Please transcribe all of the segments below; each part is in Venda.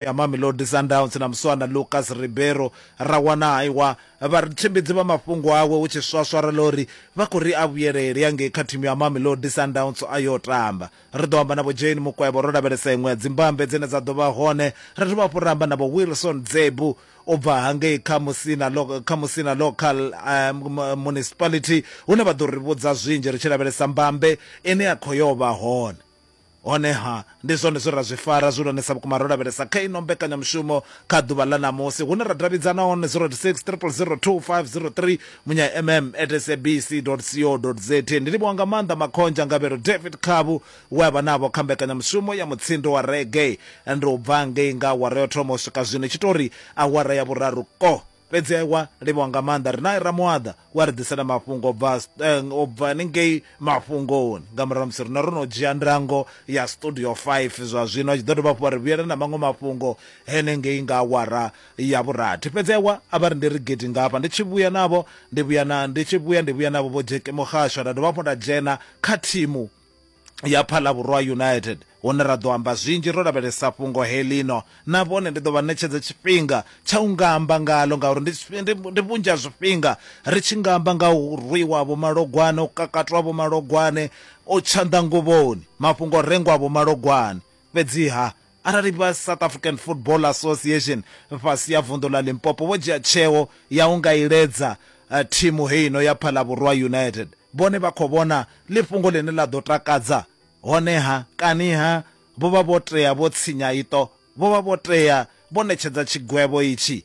ya Mamelodi Sundowns na muswana Lucas Ribeiro ra wana haiwa vhatshimbidzi vha mafhungo awe hu tshi swaswara ḽa uri vha khou ri a vhuyelele ya ngei kha thimu ya Mamelodi Sundowns a yo tamba. Ri ḓo amba na Vho Jane Mukwevho ro lavhelesa iṅwe ya dzimbambe dzine dza ḓo vha hone, ra dovha hafhu ra amba na Vho Wilson Dzebu u bva hangei kha Musina, kha Musina Local Municipality hune vha ḓo ri vhudza zwinzhi ri tshi lavhelesa mbambe ine ya khou yo vha hone. Honeha, ndi zwone zwe ra zwi fara zwihulwanesa vhukuma ro lavhelesa kha ino mbekanyamushumo kha ḓuvha ḽa ṋamusi, hune ra davhidzana hone 086 000 2503, munya-mm at sabc dot co dot za. Ndi livhuwa nga maanḓa Makhonzha Ngavhelo David Khabu we a vha navho kha mbekanyamushumo ya mutsindo wa reggae ndi u bva ngei nga awara ya u thoma u swika zwino i tshi tou ri awara ya vhuraru ko. Fhedzi a wa livhiwa nga maanḓa ri nae Ramuaḓa wa ri ḓisela mafhungo bva eh, o bva ningei mafhungoni nga murahu musi rine ro no dzhia ndango ya studio 5 zwa zwino a tshi ḓo dovha hafhu wa ri vhuyela na maṅwe mafhungo henengei nga awara ya vhurathi fhedzi a wa a vha ri ndi ri gidi nga hafha ndi tshi vhuya navho ndi vhuya na ndi tshi vhuya ndi vhuya navho vho Jeki Muhasho nda dovha hafhu nda dzhena kha thimu ya Phalabhurwa United hune ra ḓo amba zwinzhi ro lavhelesa fhungo helino na vhone ndi ḓo vha ṋetshedza tshifhinga tsha u nga amba ngalo ngauri ndi vhunzhi ha zwifhinga ri tshi nga amba nga u rwiwa vho malogwane u kakatwa vho malogwane u tshanḓa nguvhoni mafhungo rengwa vho malogwane fhedziha Arali vha South African Football Association fhasi ya vunḓu ḽa Limpopo vho dzhia tsheo ya u nga iledza eh, thimu heino ya Phalabhurwa United, vhone vha khou vhona ḽi fhungo ḽine ḽa ḓo takadza. Honeha, kaniha vho vha vho tea vho tshinya iṱo, vho vha vho tea vho ṋetshedza tshigwevho itshi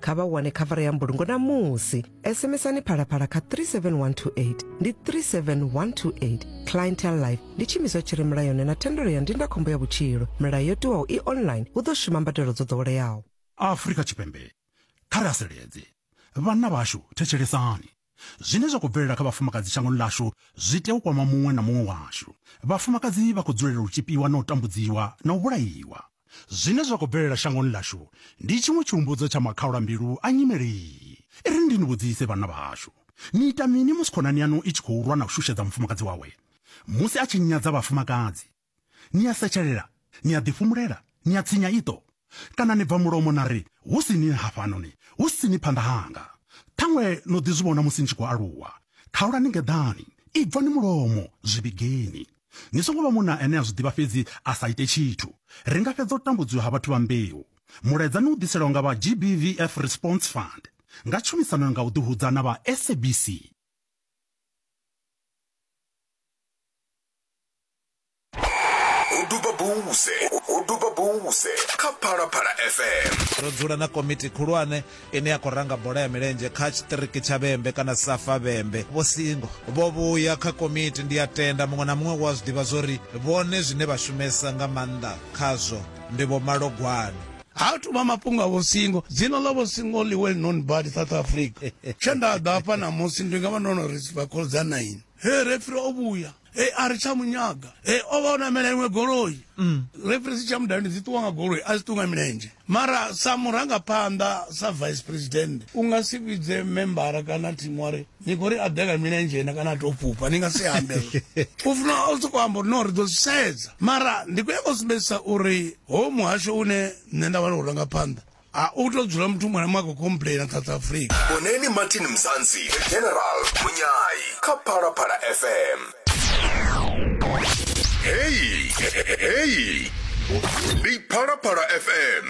kha vha wane khavara ya mbulungo na musi sms-ani phalaphala kha 37128 ndi 37128 clientel life ndi tshiimiswa tshi re mulayoni na thendelo ya ndindakhombo ya vhutshilo milayo yo tiwaho i online hu ḓo shuma mbadelo dzo ḓoweleaho afrika tshipembe kha ri haseledze vhanna vhashu thetshelesani Zwine zwa khou bvelela kha vhafumakadzi shangoni ḽashu zwi tea u kwama muṅwe na muṅwe washu. Vhafumakadzi vha khou dzulela u tzhipiwa na u tambudziwa na u vhulaiwa. Zwine zwa khou bvelela shangoni ḽashu ndi tshiṅwe tshihumbudzo tsha makhaulambilu a nyimele iyi. I ri ndi ni vhudzise, vhanna vhahashu, ni ita mini musi khonani yaṋu i tshi khou lwa na u shushedza mufumakadzi wawe, musi a tshi nyadza vhafumakadzi, Ni a setshelela, ni a ḓifhumulela, ni a tsinya iṱo, kana ni bva mulomo na ri, Hu si ni hafhanoni, hu si ni phanḓa hanga. Ṱhaṅwe no ḓi zwi vhona musi ni tshi khou aluwa. Khaulani ngeḓani, ibvani mulomo, zwi vhigeni. Ni songo vha munna ane a zwi ḓivha fhedzi a sa ite tshithu. Ri nga fhedza u tambudziwa ha vhathu vha mbeu. Mulaedza ni u ḓiselwa nga vha GBVF Response Fund nga tshumisano nga u ḓihudza na vha SABC. ho duba buse ho duba buse kha phalaphala fm ro dzula na komiti khulwane ine ya khou ranga bola ya milenzhe kha tshiṱiriki tsha vhembe kana safa vhembe vho singo vho vhuya kha komiti ndi a tenda muṅwe na muṅwe wa zwi ḓivha zwori vhone zwine vha shumesa nga maanḓa khazwo ndi vho malogwane ha thu vha mafhungo a vho singo dzina ḽa vho singo ḽi well known badi south africa tshe nda ḓa hafha ṋamusi ndi nga vha ndo no ri vha khoḽdza nine he refri o vhuya e a ri tsha munyaga e o vha o namela iṅwe goloi mm. referensi tsha mudani dzi ṱuwa nga goloi a dzi ṱuwa nga milenzhe mara sa murangaphanḓa sa vice president u nga si vhidze membara kana thimu wari ni khou ri a ḓe nga milenzhe na kana a tou fhufha ni nga si ambe u funa o sokou amba uri no ri ḓo zwi sedza mara ndi khou ya nga u sumbedzisa uri ho muhasho une nṋe nda vha ri u rangaphanḓa a u to dzula muthu muṅwe na muṅwe a khou complaina south africa vhoneni martin mzansi general munyayi kha phalaphala fm heyi heyi ndi phalaphala fm